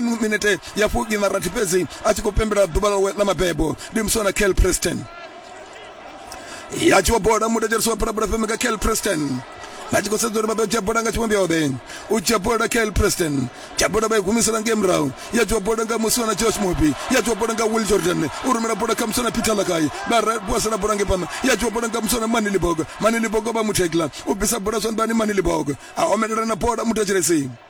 mu minete ya fugi na rathi fhedzi a tshi khou pembela ḓuvha ḽawe ḽa mabebo ndi muswa na kel preston ya tshi wa bola mudedzherisi wa bulabula fm nga kel preston vha tshi khou sedza uri vha ḓo dzhia bola nga tshivhombiombe u dzhia bola kel preston dzhia bola vha i humisela ngei murahu ya dzhiwa bola nga muswa na josh mobi ya dzhiwa bola nga will jordan u rumela bola kha muswa na peter lakai vha posela bola ngei phanḓa ya dzhiwa bola nga muswa na mani libogo mani libogo vha muthekla u bvisa bola zwanḓani mani libogo a omelela na bola mudedzheresini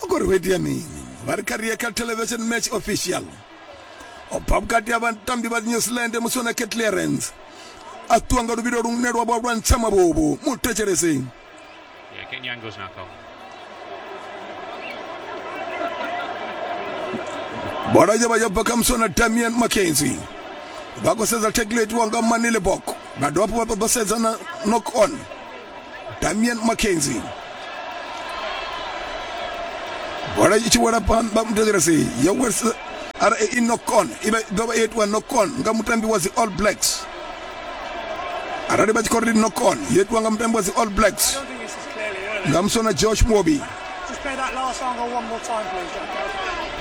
vha khou ri ho itea mini vha ri kha ri ye kha television match official o bva vhukati ha vhatambi vha new zealand musi ona khe clearance a ṱuwa nga luvhilo lune lwa vha lwa ntsha mavhovo mu thetshelese Yeah, getting the angles now, Cole. bola yo vha yo bva kha musona damian mackenzie vha khou sedza tackle itiwa nga manile bok vha dovha hafhu vha ṱoḓa sedza na knock on damian mackenzie bola i tshi wela phanḓa muthetshelesi yo welisa ara i nokon i ḓo vha i itiwa nokon nga mutambi wa dzi all blacks arali vha tshi khou ri nokon yo itiwa nga mutambi wa dzi all blacks nga musona josh mobi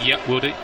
Yeah, will do.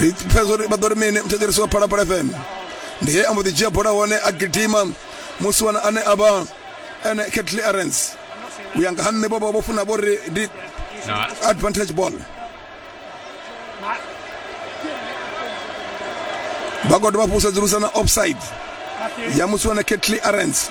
ri pfesa uri vha ḓo ri mini muthetshelesi wa phalaphala fm ndi he a mbo ḓi dzhia bola hone a gidima musi wana ane a vha ene ketli arens u ya nga ha nṋe vho vha vho funa vho ri ndi Na, advantage ball vha khou dovha fusedzulusa na offside ya musi wana ketli arens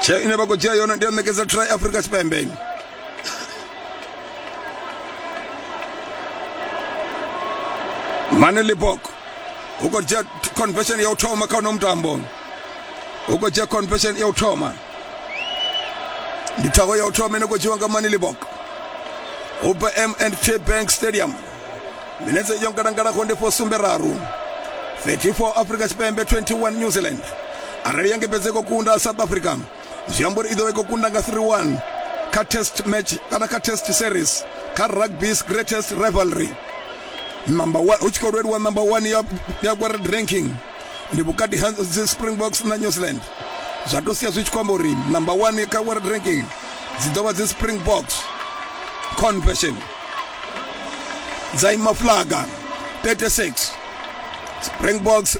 tsheo ine vha khou dzhia yone ndi ya ṋekedza try afrika tshipembe mane libok u khou dzhia confession ya u thoma kha uno mutambo u khou dzhia confession ya u thoma ndi thago ya u thoma ine khou dzhiwa nga mane libok ubm and k bank stadium minetse yo ngalangalaho ndi fo sumbe raru 34 africa tshipembe 21 new zealand arali ya ngebedze khou kunda south africa zwi amba uri i ḓo vha i khou kunda nga 31 kha test match kana kha test series kha rugby's greatest rivalry number 1 hu tshi khou lweliwa number 1 ya ya world ranking ndi vhukati ha dzi springboks na new zealand zwa to sia zwi tshi khou amba uri number one kha world ranking dzi ḓo vha dzi springboks confession dza ima flaga 36 springboks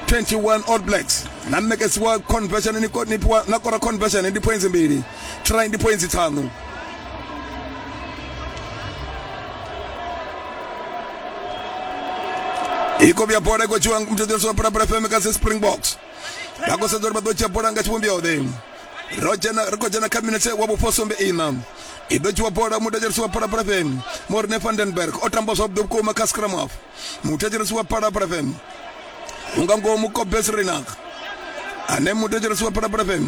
21 all blacks na mnekedziwa conversion ni fhiwa na kora conversion ndi points mbili try ndi points ṱhanu i khou vhuya bola i khou tshiwa mutshetshelesi wa pulapula fm kha springboks vha khou sedza uri vha ḓo dzhia bola nga tshivhumbeo ḓe ro dzhena ri khou dzhena kha minetse wa vhufosumbe ina i ḓo dzhiwa bola mutshetshelesi wa pulapula fm morne vandenberg o tamba zwavhuḓi vhukuma kha scrum off muthetshelesi wa phalaphala fm unga ngomu kobes renak ane muthetshelesi wa phalaphala fm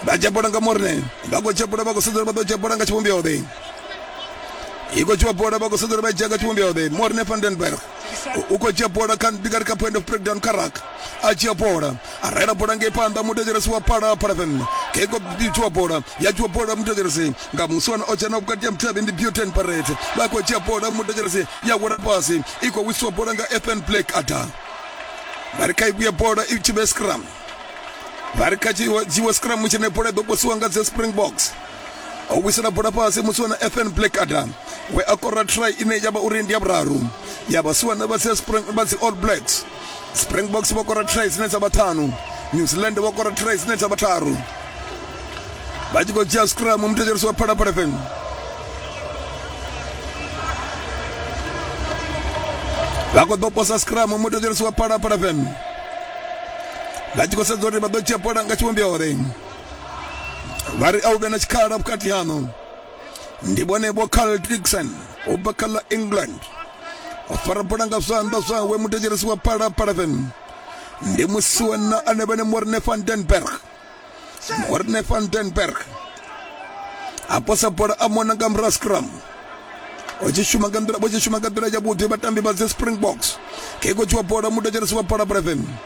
vha tshapula nga morne vha khou tshapula vha khou sedzela vha ḓo tshapula nga tshivhumbeo ḓe i khou tshiwa bola vha khou sedzela vha dzhia nga tshivhumbeo ḓe morne vandenberg u khou dzhia bola kha ndi nga ri kha point of breakdown kha raka a dzhia bola a raela bola ngei phanḓa muthetshelesi wa phala paraven ngei ngo dzhiwa bola ya dzhiwa bola muthetshelesi nga muswana o dzhena vhukati ya muthavhi ndi buten paret vha khou dzhia bola muthetshelesi ya wela fhasi i khou wisiwa bola nga ethan black ada vha ri kha i vhuye bola i tshi vhe scrum vha ri kha dzhiwe scrum tshine bola i ḓo posiwa nga dze springboks o wisela bola fhasi musiwana ethan black ada we a kora try ine ya vha uri ndi ya vhuraru ya vhasiwana vha dzi all blacks springboks vho kora tray dzine dza vha ṱhanu new zealand vho kora tray dzine dza vha tharu vha tshi khou dzhia scrum muthetshelisi wa phalaphala fm vha khou ḓo posa scrum muthetshelisi wa phalaphala fm vha tshi khou sedza uri vha ḓo dzhia bola nga tshivhumbeo uri vha ri a u vhe na tshikhala vhukati haṋu ndi vhone vho carl dixon u bva kha ḽa england o fara bola nga zwanḓa zwawe mutetshelesi wa phalaphala fm ndi musi wena ane vhane morne van denberg morne van denberg a posa bola a mona nga murahu scrum vha tshi shuma nga nḓila vha tshi shuma nga nḓila yavhuḓi vhatambi vha dzi springboks khe khotshi wa bola mutetshelesi wa phalaphala fm